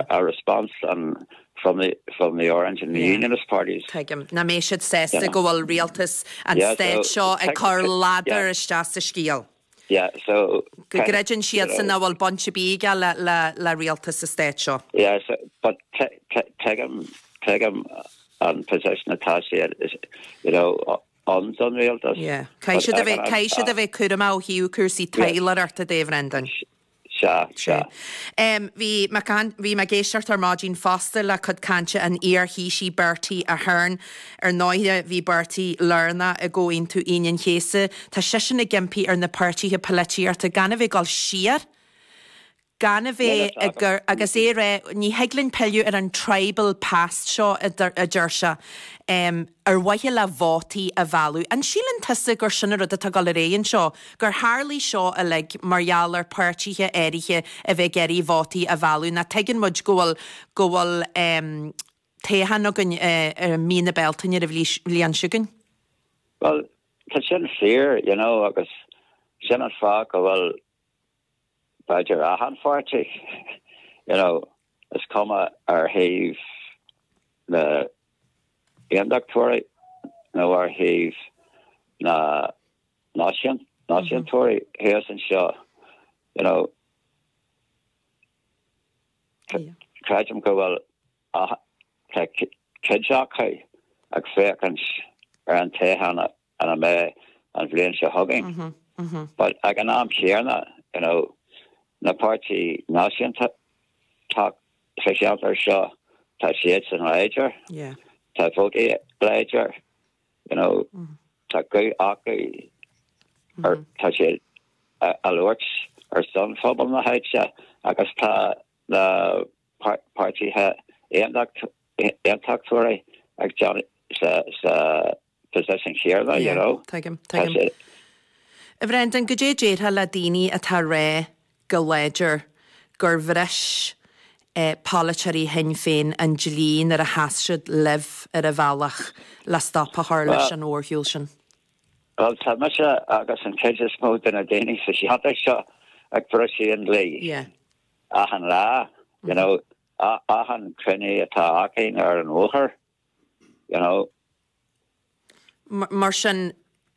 a response from the from the orange and the unionist parties. Tuigim. Ná mbeidh siad sásta go bhfuil rialtas an stáit seo ag cur ladar isteach sa scéal. Yeah, so. Go gcreideann siadsan nach bhfuil baint ar bith aige le rialtas an stáit seo. Yeah, so, but tuigim, tuigim an position atá siad, you know, ann, an rialtas. Yeah. Caithfidh siad a bheith, caithfidh siad a bheith cúramach ó thaobh cúrsaí taidhleoireachta de, a Bhreandáin. Sea, sea. Bhí mé ag éisteacht ar maidin fosta le cuid cainte an iar-Thaoisigh Bertie Ahern. Ar ndóighe bhí Bertie lárnach i gComhaontú Aoine an Chéasta. Tá seisean ag impí ar na páirtithe polaitíochta gan a bheith ag dul siar, gan a bheith ag cur, agus é ag rá, ní thig linn pilleadh ar an tribal past seo a deir sé. ar mhaithe le vótaí a mhealladh. An síleann tusa gur sin an rud atá ag dul ar aghaidh anseo, gur tharlaigh seo uilig mar gheall ar pháirtithe áirithe a bheith ag iarraidh vótaí a mhealladh, ná tuigeann muid go bhfuil, go bhfuil toghchán againn i mí na Bealtaine ar an bhliain seo chugainn? Bhuel, tá sin fíor, you know, agus sin an fáth go bhfuil. b'fhéidir achan pháirtí, you know, is cuma ar thaobh na nAondachtóirí nó ar thaobh na náisiúntóirí thíos anseo, you know, creidim go bhfuil cuid acu ag féachaint ar an toghchán an May an bhliain seo chugainn. But ag an am chéanna, you know, na páirtithe náisiúnta atá sa cheantar seo, tá siadsan láidir, tá vóta láidir acu, you know, tá guth acu, tá siad ag labhairt ar son phobal na háite agus tá na páirtithe aontachtóirí ag déanamh sa An rud céanna, you know. Yeah, tuigim, tuigim. A Bhrendan, goidé a déarfá le daoine atá ag rá go láidir gur bhris polaiteoirí Shinn Féin an dlí nuair a sheas siad libh ar an bhealach le stop a chur leis an mhórshiúl sin? Bhuel, tá mise agus an chuid is mó de na daoine sa cheantar seo ag briseadh an dlí achan lá, you know, achan cruinniú atá againn ar an bhóthar. you know. Mar sin,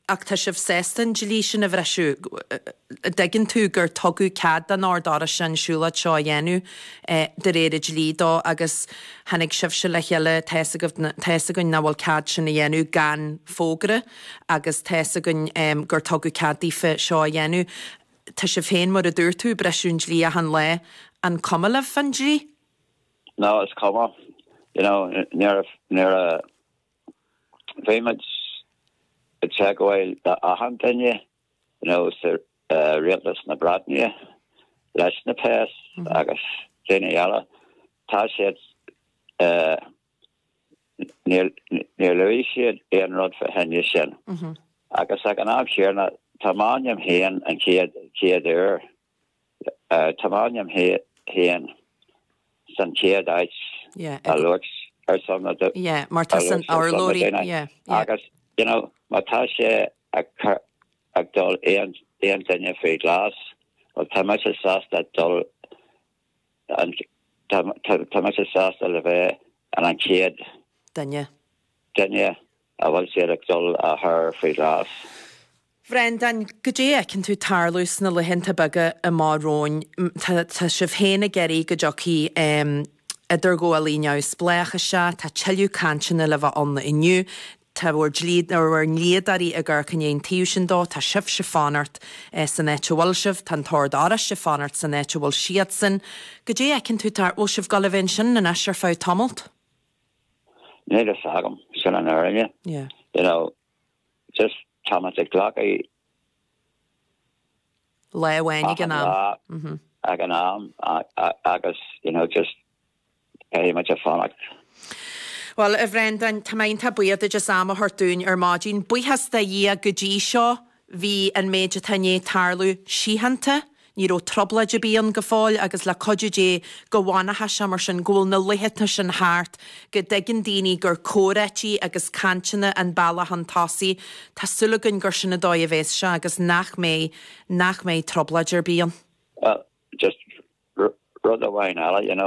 ach tá sibh sásta an dlí sin a bhriseadh? An dtuigeann tú gur tugadh cead don Ord Oráiste an siúlóid seo a dhéanamh de réir an dlí dó agus tháinig sibhse le chéile, tá fhios agaibh, tá fhios againn nach bhfuil cead sin a dhéanamh gan fógra agus tá fhios againn gur tugadh cead daofa seo a dhéanamh. Tá sibh féin, mar a dúirt tú, ag briseadh an dlí achan lá, an cuma libh faoin dlí? No, is cuma. You know, nuair a, nuair a bhí muid ag teagmháil le achan duine, you know, sa, eh, Rialtas na Breataine, leis na péas agus daoine eile, tá siad, eh, níor, níor luaigh siad aon rud fá choinne sin. Agus ag an am céanna, tá m'ainm féin an chéad, chéad uair Tá m'ainm féin san chéad áit a luaigh ar son na daoine. Yeah, mar tá san urlár í. Yeah, agus you know má tá sé ag dul aon duine faoi ghlas, well tá mise sásta dul, tá mise sásta le bheith an an chéad duine duine An bhfuil siad ag dul a chur faoi ghlas? Bhreandáin, goidé a fheiceann tú ag tarlú sna laethanta beaga amach romhainn? Tá sibh féin ag iarraidh go dtiocfaidh idirghabhálaí neamhspléach isteach, tá tuilleadh cainteanna le bheith ann inniu, tá bhur ndlíodóirí ag amharc i ndiaidh an taobh sin dó, tá sibhse ag fanacht san áit a bhfuil sibh, tá an tOrd Oráiste ag fanacht san áit a bhfuil siadsan. Goidé a fheiceann tú tar, bhfuil sibh ag dul a bheith ansin anois ar feadh tamaillt? Níl fhios agam, sin an fhírinne. You know, just tá muid ag glacadh. lá amháin ag an am. ag an am agus, you know, just caithfidh muid a fanacht. Bhuel, a Bhreandáin, tá mé iontach buíoch duit as am a thabhairt dúinn ar maidin. Buíochas do Dhia go dtí seo. Bhí an méid atá i ndiaidh tarlú síochánta, ní raibh trioblóid ar bith ann go fóill agus le cuidiú Dé go bhfanfaidh sé mar sin, go bhfuil na laetha sin thart, go dtuigeann daoine gur comhráití agus cainteanna an bealach chun tosaigh, tá súil againn gur sin an dóigh a bhéas sé agus nach mbeidh, nach mbeidh trioblóid ar bith ann. Bhuel, just rud amháin eile, you know.